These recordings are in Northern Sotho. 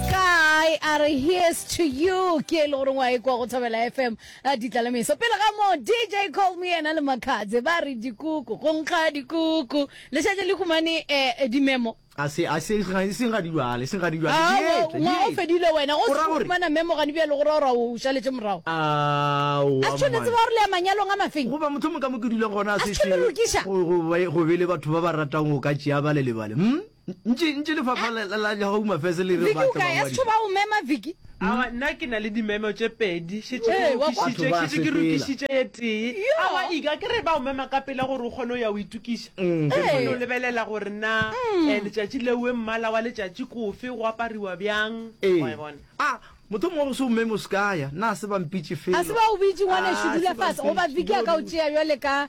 Kae a re here's to you ke e le gore ngwa e kwa go thobela FM a ditla le meso pele ga mo DJ call me ena le makhatse ba re dikuku go nkga dikuku le šetse le humane eh, dimemo a se a se ga se ga dilwale se ga dilwale Ah, Ye, wa- ye. ngwa o fedile wena go O ra se gore- fumana memo gane bjalo gore ora o šaletše morago Aowa, a se tshwanetse ba re le ya manyalong a mafeng goba motho mo ka mo ke dula gona A se tshwene lokiša. go bele batho ba ba ratang go ka tšea ba le lebale hm ntši ntši lefapha la la la home affairs le re Viki batla o ka ya bangwadi. setho ba o mema Viki. Awa nna ke na le dimemo tše pedi šetše ke Ee, wa kwa- lokišitše Batho ba šetše ke sepela. lokišitše ye tee Yo. awa ika ke re ba o mema ka pela gore o kgone o ya o itukiša Mm, ke o kgone o Ee. lebelela gore na eh, letšatši leue mmala wa letšatši kofe go apariwa bjang Ee. Wa e bona a motho mongwe go se o meme o se kaya na se bampitše felo a se ba o bitše ngwanešu Ah, dula se fase goba bampitše. viki a ka o tšea bjale ka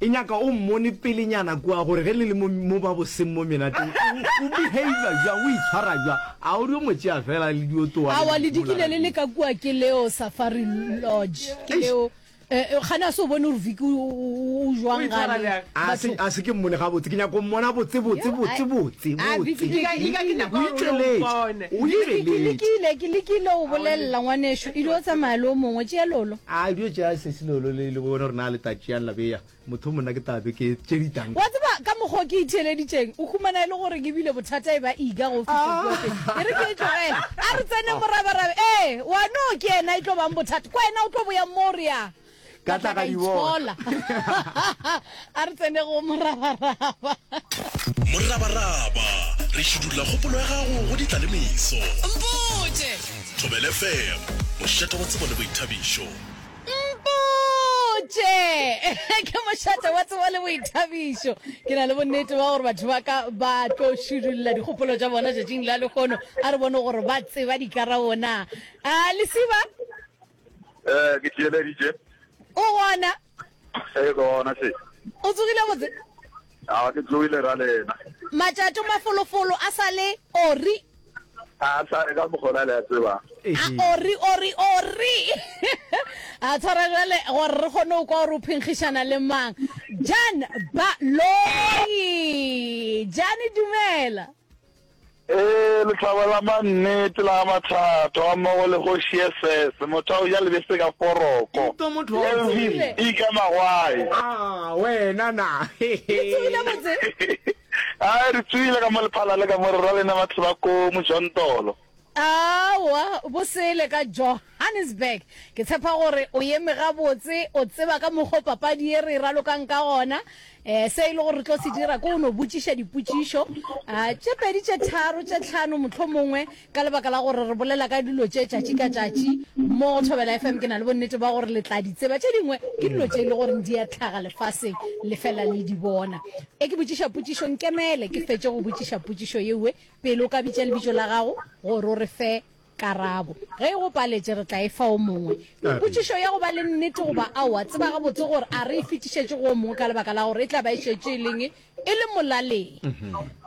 E nyaka o mmone pelenyana kua gore ge le le mo, mo ba boseng mo menateng, o, o behavior jwang, o itshwara jwang. A o dio mo tšea fela le dio towa le Awa le dikile le bolalane. leka kua ke leo Safari Lodge ke Eish. leo eh, eh, gane a se o bone gore Vicky o, o, o, o jwang gane. A se, Batho- a se ke mmone gabotse, ke nyaka o mmona botse, botse, Yo, botse, ai- botse, Ah, botse. Vicky, Ika- Vicky, ika ke nyaka O gore o itšweletše, mpone. o Vicky, ke itšweletše. lekile, ke lekile o bolelela ngwanešu, ile o tsamaya le o mongwe, tšea lolo. A bjo tšea lesesi leo lo le le bone gore na le tla tšeang la bea. Motho yo monna ke tla be ke tšedi tang. Wa tseba ka mokgwa o ke itheeleditšeng? O humana e le gore ke bile bothata e ba eager go fihla kua pele. Ke re ke e tlogele. A re tsene morabarabe. Ee, wa no ke yena e tlo bang bothata. Kwena o tlo boya mo o re ya. Ka tla ka di bona. a re tsene go morabaraba morabaraba re šidula kgopolo ya gago go ditla le meso mpotše thobele fem mošete wa tsebo le boithabišo mpotše ke mošate wa tsebo le boithabišo ke na le bonnete ba gore batho ba ka ba tlo šidulla dikgopolo tša bona tšatšing la lekgono a re bone gore ba tseba dikarabona a lesiba Eh, ke theeleditše. O gona? E gona se. O tsogile botse? A ke tsogile ra lena. Matšato mafolofolo a sa le ori. A sa le ka mogola le a tseba. A ori ori ori. A tshwara jale gore re kgone go kwa gore o phenkgišana le mang. Jan ba loyi. Jane dumela. Ee, lehlaba la mannete la ga Mathato gammogo le Kgoši Yesese, motho a go ja lebese ka foroko. Ntwa motho wa go Elvis tsogile. E ka magwae. Ah, wena na. Re tsogile botse. Ai, re tsoile ka mo lephala le ka mo re rwa lena batho ba ko Mojontolo. Aowa, bo sele ka Johannesburg. Ke tshepa gore o eme gabotse, o tseba ka mokgo papadi ye re e ralokang ka gona. Eh, se e le gore re tlo se dira ke go no botšiša dipotšišo ah, tše pedi, tše tharo, tše tlhano mohlomongwe, ka lebaka la gore re bolela ka dilo tše tšatši ka tšatši mo go Thobela FM. Ke na le bonnete ba gore le tla di tseba. Tše dingwe ke dilo tše e le goreng di a tlhaga lefaseng, le fela le di bona. E ke botšiša potšišo, nkemele ke fetše go botšiša potšišo yewe, Pele o ka bitša lebitšo la gago gore o re fe karabo. Ge e go paletše, re tla e fa o mongwe. Mipotšišo ya go ba le nnete goba aowa, tseba gabotse gore a re e fetišetše go o mongwe ka lebaka la gore e tla ba e šetše e leng e le molaleng.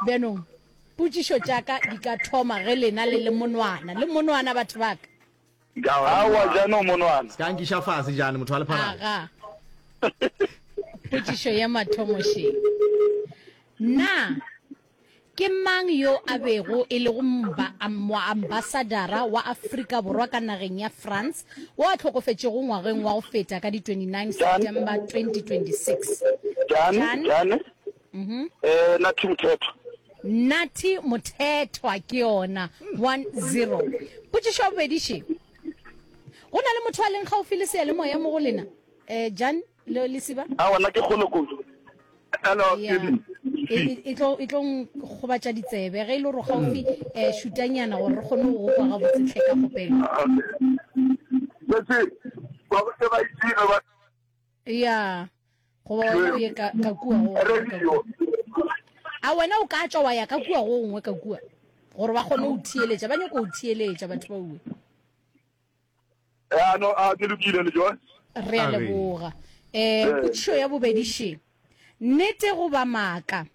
Bjanong, potšišo tša ka di ka thoma ge lena le le monwana. Le monwana, batho ba ka? Aowa, bjanong, monwana. Se ka nkiša fase, Jane, motho wa lepharana. Aga. Potšišo ya mathomo šee. Na. Ke mang yo a bego e lego moambasadara wa Afrika Borwa ka nageng ya France wo a hlokofetšego ngwageng wa go feta ka di 29 September 2026? Jan. Nathi Mothethwa. Nathi Mothethwa ke yona, 1-0. Potšišo ya bobedi, Še, go na le motho a leng kgaufhi le seyalemoya mo go lena? Jan. Lo lesiba? A wena ke kgolo kudu. Hello, Steven. E tlo e tlo gobatša ditsebe ge e le gore gaufi eh shutanyana gore re kgone go kwa ga botsetlhe ka kopelo. Letse ba go tseba itsile ba. Ya. Go ba wena o ye ka ka kua go. Radio. A wena o ka tšwa wa ya ka kua go gongwe ka kua gore ba kgone go thieletša ba nyako go thieletša batho ba uwe. Eh, a no, a ke lokile le John. Re a leboga. Eh, Eh, potšišo ya bobedi še. Nnete goba maaka?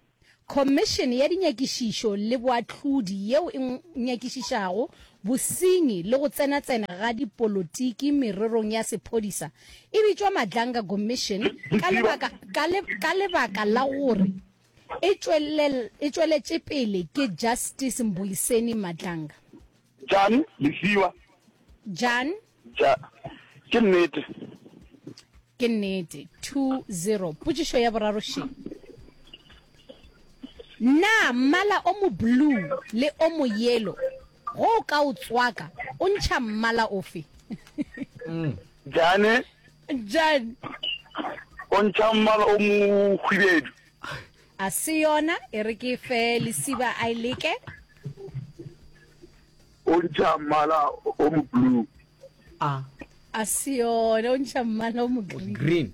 Khomišene ya Dinyakišišo le Boahlodi yeo e ng- nyakišišago bosenyi le go tsenatsena ga dipolotiki mererong ya sephodisa e bitšwa Madlanga Commission ka lebaka, ka le, ka lebaka la gore e, tšwelel, e tšweletše pele ke Justice Mbuyiseni Madlanga. Jan, Lefiwa. Jan. Ja, ke nnete. Ke nnete. 2-0. Potšišo ya boraro še. Na mmala o mo blue le o mo yelo go o ka o tswaka o ntšha mmala ofe? Mm. Jane. Jan. O ntšha mmala o mo hwibedu. A se yona, e re ke fe lesiba a e leke. O ntšha mmala o mo blue. A. A se yona, o ntšha mmala o mo green. Green,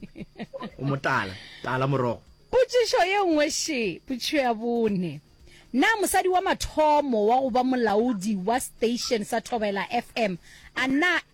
o mo tala, tala morogo. Potšišo ye nngwe še, potšišo ya bone. Na mosadi wa mathomo wa go ba molaodi wa station sa Thobela FM a na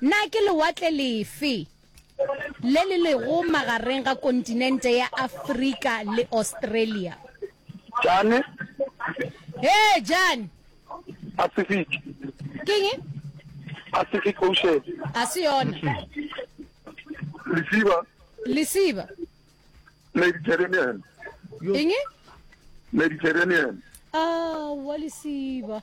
Na ke lewatle lefe le le lego magareng ga kontinente ya Afrika le Australia? Jane. Hee, Jane. Pacific. Keng? Pacific Ocean. A se yona. Lesiba. Lesiba. Mediterranean. Eng? Mediterranean. Ah, wa lesiba.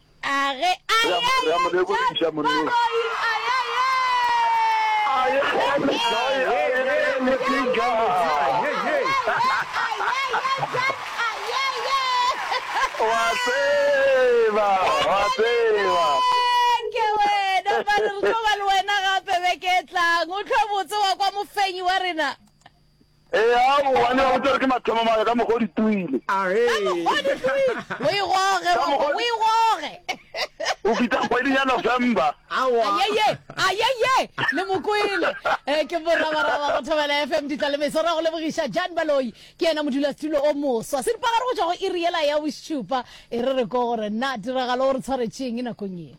A re a ya ya Re a mo lebogiša, monna. Maroi a ya ya. A ya ya Metsai, a ya ya ya Motsinka. Wa tseba, wa tseba. Ke wena ba re re tlo ba le wena gape beke e tlang o tlho botse wa kwa mofenyi wa rena Eya, o wane ba botša gore ke mathomo maka ka mokgwa o di tuile. O e goge, Ka mokgwa- o e goge. O fihla kgweding ya November. Aowa. Ayeye, ayeye, le mo kwele. Eh, ke morabaraba go thobela FM ditla le meso ra go lebogiša Jan Baloi ke yena modulasetulo o moswa. Se dipagare go tšwa go iri yela ya bošupa e re re ko gore na tiragalo o re tshwaretšeng nakong ye.